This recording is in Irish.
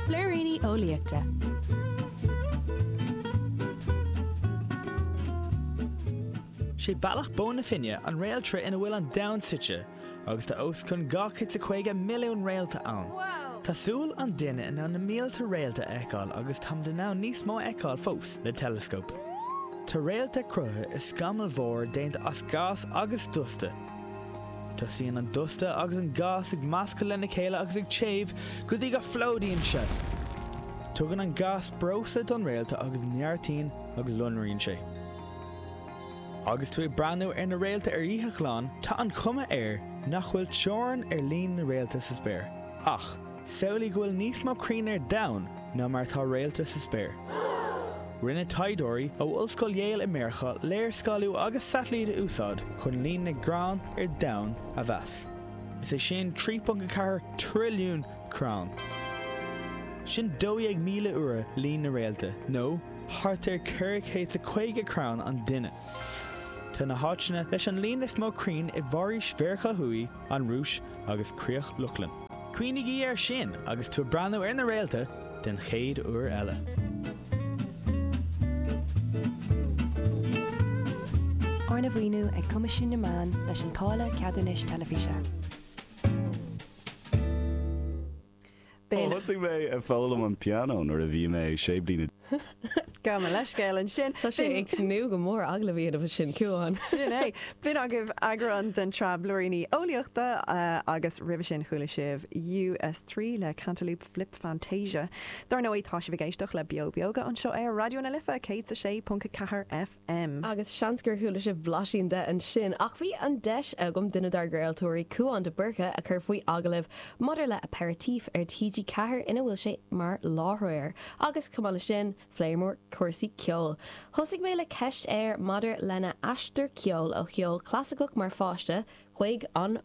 Blúiríní Eolaíochta. Sé Bealach na Bó Finne an réaltra ina bhfuil an Domhan suite, agus tá os cionn 250 milliún réalta ann. Tá súil an duine in ann na mílte réalta a fheiceáil agus táimid in ann níos mó a fheiceáil fós le teileascóp. Tá réalta cruthaithe i scamaill mhóra déanta as gás agus dusta. Tosaíonn an dusta agus an gás ag meascadh lena chéile agus ag téamh go dtí go bplódaíonn sé. Tugann an gás breosla don réalta agus neartaíonn agus lonraíonn sé. Agus tú ag breathnú ar na réalta ar oíche ghlan, tá an chuma air nach bhfuil teorainn ar líon na réalta sa spéir. Ach. Samhlaigh go bhfuil níos mó crainn ar domhan ná mar atá réalta sa spéir. Rinne taighdeoirí ó Ollscoil Yale i Meiriceá léarscáiliú agus satailít a úsáid chun líon na gcrann ar domhan a mheas. Is é sin 3.04 trilliún crann. Sin 12,000 uair líon na réalta, nó thart ar 400 is a caoga crann an duine. Tá na háiteanna leis an líon is mó crainn i bhforaoisí Mheiriceá Thuaidh, an Rúis agus Críoch Lochlann. Cuimhnigí air sin agus tú ag breathnú ar na réalta an chéad uair eile. Arna mhaoiniú ag Coimisiún na Meán leis an Táille Ceadúnais Teilifíse. B'in. Thosaigh mé ag foghlaim an pianó nuair a bhí mé sé bliana. Gabh mo leithscéal ansin. Tá sé ag tnúth go mór agallamh iad agus sin Cuán. Sin é. B'in agaibh eagrán den tsraith Blúiríní Eolaíochta agus roimhe sin chuala sibh US3 le Cantaloop Flip Fantasia. Dár ndóigh tá sibh ag éisteacht le Beo Beoga anseo ar Raidió na Life 106.4 F. M. Agus seans gur chuala sibh blaisín de ansin, ach bhí an deis agam duine dár gcraoltóirí, Cuán de Búrca, a chur faoi agallamh maidir le Aperitif ar TG4 ina bhfuil sé mar láithreoir. Agus, chomh maith leis sin, phléamar cúrsaí ceoil. Thosaigh mé le ceist air maidir lena aistear ceoil ó cheol clasaiceach mar pháiste chuig an